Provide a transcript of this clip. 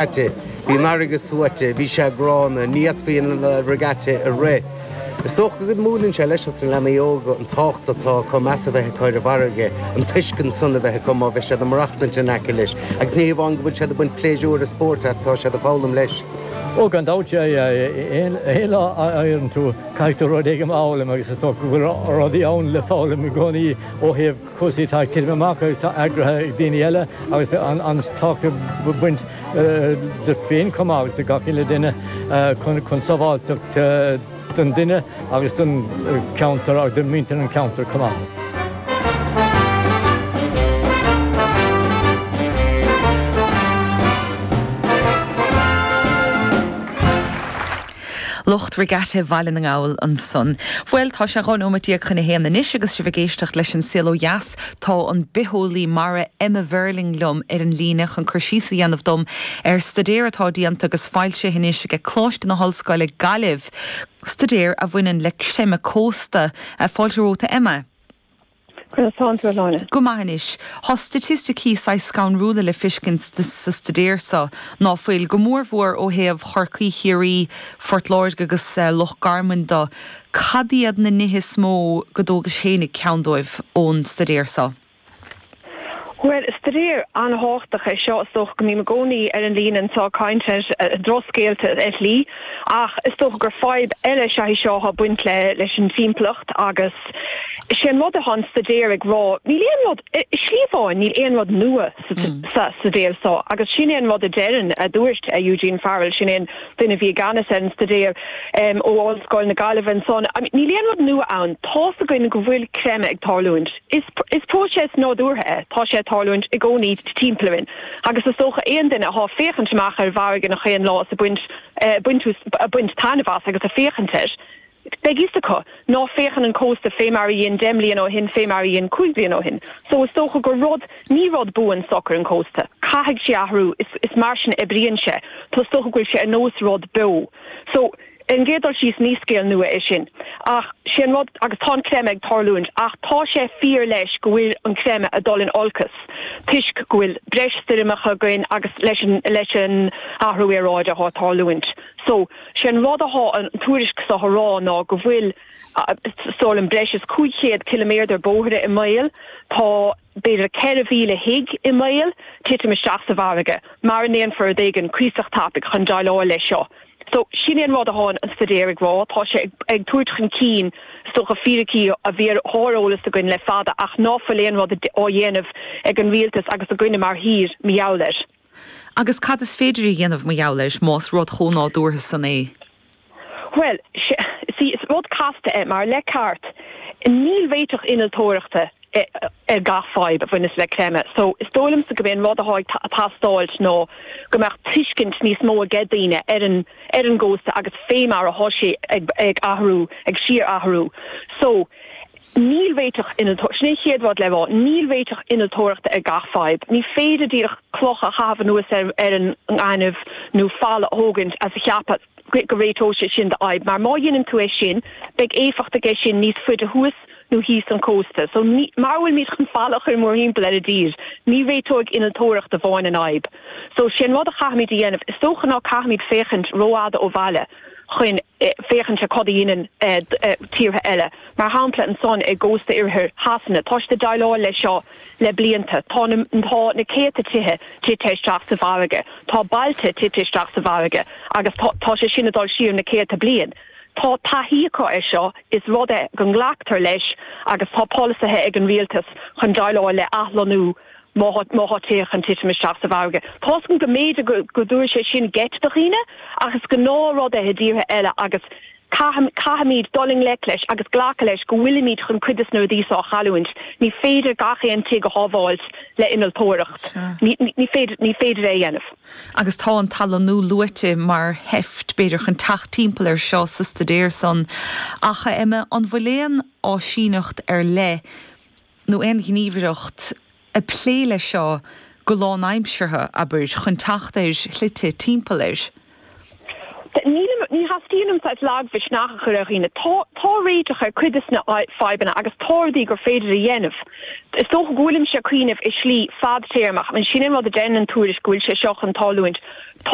Bhí an fharraige suaite, bhí sé gránna, ní fhéadfaí an regatta a rith. Is dócha go múineann sé leis na leanaí óga an tábhacht atá chun meas a bheith acu ar an bhfarraige, an tuiscint san a bheith acu má bheidh siad ag maireachtaint in aice leis, agus ní hamháin go bhfuil siad ag baint pléisiúir is spóirt as, tá siad ag foghlaim leis. Ó, gan dabht, aon lá a éiríonn tú caithfidh tú rud éigin a fhoghlaim agus is dócha go bhfuil rudaí ann le foghlaim i gcónaí ó thaobh, cúrsaí atá ag titim amach agus atá eagraithe ag daoine eile agus an tábhacht a bhaineann duit féin chomh maith agus do gach uile duine chun sábháilteacht don duine agus don cheantar agus do mhuintir an cheantair chomh maith. Lucht Regatta Bhaile na nGall ansan. Bhuel, tá sé 12 nóiméad chun a haon anois agus sibh ag éisteacht leis An Saol Ó Dheas. Tá an bitheolaí mara Emma Verling liom ar an líne chun cur síos a dhéanamh dom ar staidéar atá déanta agus foilsithe anois aici, Coláiste na hOllscoile, Gaillimh, staidéar a bhaineann le creimeadh cósta. Fáilte romhat, a Emma. Conas tánn tú, a Shláine? Go maith anois. Thá staitisticí saghas scanrúla le fiscint sa staidéar so, ná fuil? Go mór mhór ó thaobh Chorcaí, Chiarraí, Phort Láirge agus Loch Garmain do. Cad iad na nithe is mó go dtógais fhéinig ceann díobh ón staidéar so? Bhuel, staidéar an-thábhachtach é seo, is dócha go mbím i gcónaí ar an líne anseo ag caint ar dhrochscéalta i slí ach is dócha gur fadhb eile is ea í seo atá ag baint leis an timpeallacht agus is é an rud atá an staidéar ag rá, níl aon rud, i slí amháin, níl aon rud nua sa staidéar seo agus sin é an rud a deireann, a dúirt Eugene Farrell, sin é an duine a bhí i gceannas ar an staidéar ó Ollscoil na Gaillimhe ansan, níl aon rud nua ann, tá's againn go bhfuil creimeadh ag tarlúint. Is próiseas nádúrtha é, tá sé ag tarlúint i gcónaí timpeall orainn agus is dócha aon duine athá féachaint amach ar an bhfarraige nach aon lá is ag baint taitneamh as agus ag féachaint air, beidh fhios acu ná féachann an cósta fé mar a dhein deich mbliana ó shin fé mar a dhein cúig bliana ó shin. So is dócha gur rud, ní rud buan socair an cósta, caithfidh sé athrú, is mar sin a oibríonn sé, so is dócha go bhfuil sé ar nós rud beo. So. An chéad dul síos ní scéal nua é sin ach sé an rud agus tá an creimeadh ag tarlúint ach tá sé fíor leis go bhfuil an creimeadh a dul in olcas toisc go bhfuil breis stoirmeacha againn agus leis an leis an athrú aeráide atá ag tarlúint so sé an rud atá an tuairisc so a rá ná go bhfuil, a, suas le breis is 500 ciliméadar bóithre i mbaol tá b'fhéidir 4,000 tigh i mbaol titim isteach sa bhfarraige, mara ndéanfar rud éigin cuíosach tapaigh chun déileáil leis seo. So, sin é an rud a thá an staidéar ag rá, tá sé ag tabhairt chun cinn, is dócha, fíricí a bhí ar eolas againn le fada ach ná fuil aon rud á dhéanamh ag an rialtas agus againne mar thír, mar gheall air. Agus cad is féidir a dhéanamh mar gheall air, más rud chomh nádúrtha san é? Bhuel, sea, is rud casta é, mar le ceart, níl réiteach innealtóireachta ar gach fadhb a bhaineas le creimeadh, só, is dóigh liomsa gob é an rud atá ag teastáilt ná go mbeadh tuiscint níos mó age daoine ar an, ar an gcósta agus fé mar atá sé ag, ag athrú, ag síor-athrú. So. Níl réiteach innealtóireachta, sin é an chéad rud le rá, níl réiteach innealtóireachta ar gach fadhb. Ní féidir díreach cloch a chaitheamh anuas ar an ngaineamh nó falla a thógaint is a cheapadh go réiteoidh sé sin do fhadhb, mar má dhéanann tú é sin, beidh éifeacht aige sin níos faide thuas nó thíos an cósta. So, mara bhfuil muid chun falla a chuir mórthimpeall ar an dtír, ní réiteoidh innealtóireacht amháin an fhadhb. So, sé an rud a chaithfimid a dhéanamh, is dócha ná caithimid féachaint ró-fhada ó bhaile chun. féachaint cad a dhéanann tíortha eile, mar shampla ansan i gcósta oirthear Shasana. Tá siad ag déileáil leis seo le blianta. Tá na céadta tithe tite isteach sa bhfarraige. Tá bailte tite isteach sa bhfarraige agus tá sé sin ag dul siar na céadta bliain. Tá taithí acu air seo, is rud é go nglactar leis agus tá polasaithe ag an rialtas chun déileáil le athlonnú Má tá tithe chun titim isteach sa bhfarraige, tá seans go mb'fhéidir go dtabharfadh sé sin geit do dhaoine, ach is gnáthrud é i dtíortha eile agus caithfimid dul i ngleic leis agus glacadh leis go bhfuilimid chun cuid des na rudaí seo a chailliúint. Ní féidir gach aon tigh a shábháilt le innealtóireacht, ní féidir é a dhéanamh. Agus tá an t-athlonnú luaite mar sheift, b'fhéidir, chun teacht timpeall air seo sa staidéar san. Ach, a Emma, an bhfuil aon áisíneacht ar leith, nó aon ghníomhaireacht ag plé leis seo go lánaimseartha, abair, chun teacht ar shlite timpeall air? Ní theastaíonn uaim saghas lagmhisneach a chur ar dhaoine. Tá, tá réiteach ar cuid des na fadhbanna agus tá rudaí gur féidir a dhéanamh. Is dócha go bhfuilimse ag cuimhneamh i slí fadtéarmach, ach sin an rud a deireann an tuairisc, go bhfuil sé seo chun tarlúint?